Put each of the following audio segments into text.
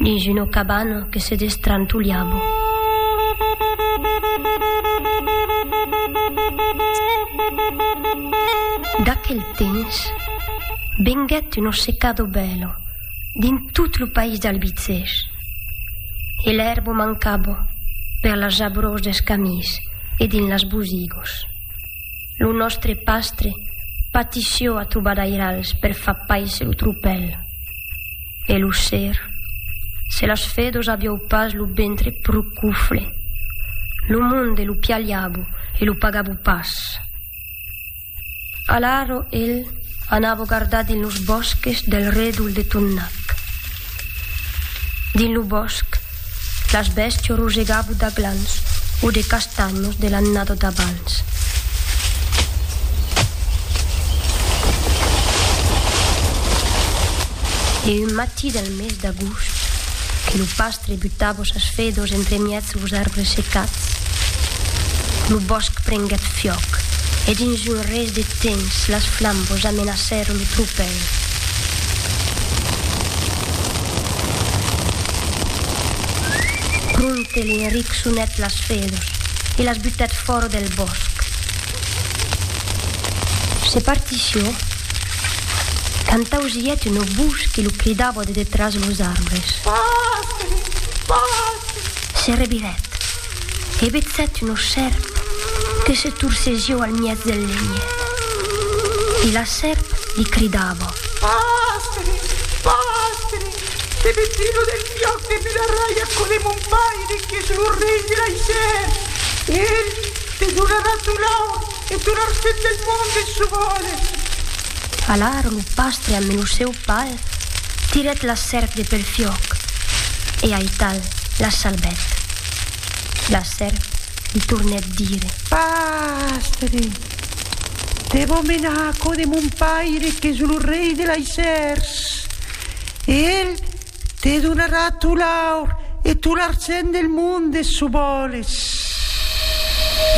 Dins una cabana que se destrantolhava. D'aquel temps venguèt una secada bèla dins tot lo país d'Albicèch e l'èrba mancava per las jabrós dels camins e dins las bosigos. Lo nòstre pastre patissió a trobadairals per far paisser lo tropèl. E lo ser. Se las fedos aviou pas lo ventre pro cufle. Lo monde lo pialhavo e lo pagavo pas. Alaro el anavo gardar dins los bòsques del redol de Tonnac. Dins lo bòsc. Las bèstia rogegava d'aglans o de castanhos de l'annada d'abans. E un matí del mes d'agost, que lo pastre butava sas fedòs entremièg los arbres secats, lo bòsc prenguèt fiòc e dins un res de temps las flambos amenacèron lo tropèl. Prompte Lingeric sonèt las fedus e las butèt fòra del bòsc. Se partició quand ausièt un obús que lo cridava de detràs los arbres. Se revirèt. He vetzat una sèrp que se torcezió al miètz del lenhet. E la sèrp li cridava. Pastre! Pastre! Te veti lo del piòc de Bularrai aquò de mon paire qu'es lo rei de l'Aisèr. Ell te donarà ton aur. E tot l'argent del monde se vòles. Alara lo pastre ambe lo seu pal tirèt la sèrp de pel fiòc e aital la salbèt. La sèrp li tornèt dire. Pastre, te vò menar a cò de mon paire qu'es lo rei de laissèrs e el Te donarà tot l'aur e tot l'argent del monde s'o vòles.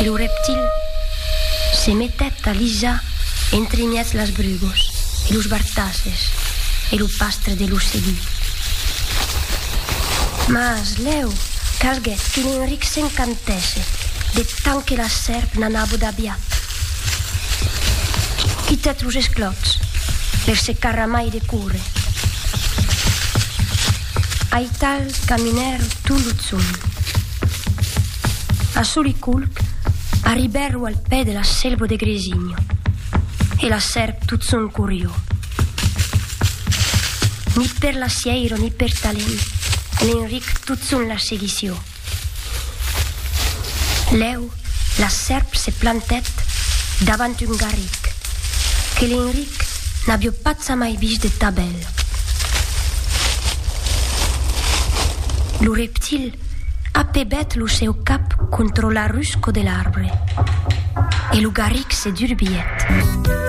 Lo reptil se metèt a lisar entre mièg las brugos e los bartasses e lo pastre de lo seguí. Mas lèu calguèt que Enric s'encantèsse de tant que la sèrp n'anava d'aviat. Quita tos esclòps per se carramai de córrer. Aital caminèr tot lo tson. A Soliculc arribèrro al pè de la selva de Gresinho e la sèrp tot son corrió. Ni per la sièira ni per talent, l'Enric tot son la seguició. Lèu, la sèrp se plantèt davant un garric que l'Enric n'avió patzamai vist de ta bèl. Lo reptil apebèt lo seu cap contra la rusco de l'arbre e lo garric se durbiguèt.